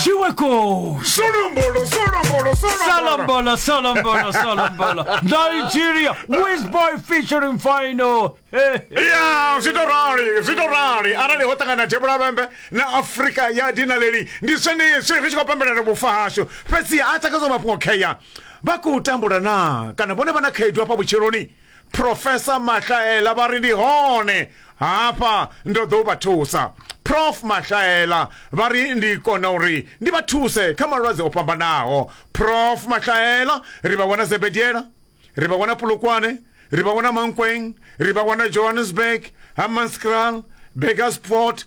Shiweko! Solombolo, solombolo, Solombolo, solombolo, solombolo. Nigeria, Wizboy featuring Final. Hey, hey. ya zwi to rali zwi to rali arali ho ṱangana tevhula vhembe na afurika ya dinaleli ndi zwenezwi ri tshi khou pembelela vhufa hashu fhedzi a takadzwa mafhungo kheya vha khou tambula na kana vhone vha na khaedu hafha vhutshiloni Professor Mahlaela vha ri ndi hone hafha ndo ḓo vha thusa prof mahlaela vha ri ndi kona uri ndi vha thuse kha malwadze o fhambanaho prof mahlaela ri vha wana zebediela ri vha wana pulukwane ri vha wana mankweng ri vha wana johannesburg hammanskraal begasfort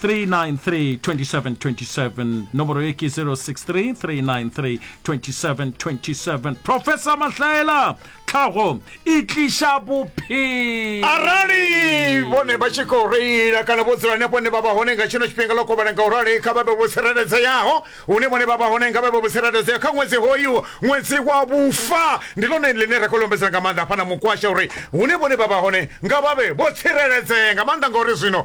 393 2727 nomoro e ke 063 393 2727 professor mahlaela tlhago e tliša bophelo arali vhone vha tshi khou reila kana vho dzula hanefho hune vha vha hone nga tshino tshifhinga ḽo kovhana nga u rali kha vha vhe vho tsireledzeaho hune vhone vha vha hone nga vha vhe vho tsireledzeaho kha ṅwedzi hoyu ṅwedzi wa vhufa ndi ḽone ḽine ra khou lombedzela nga maanḓa hafha na mukwasha uri hune vhone vha vha hone nga vha vhe vho tsireledzea nga maanḓa ngauri zwino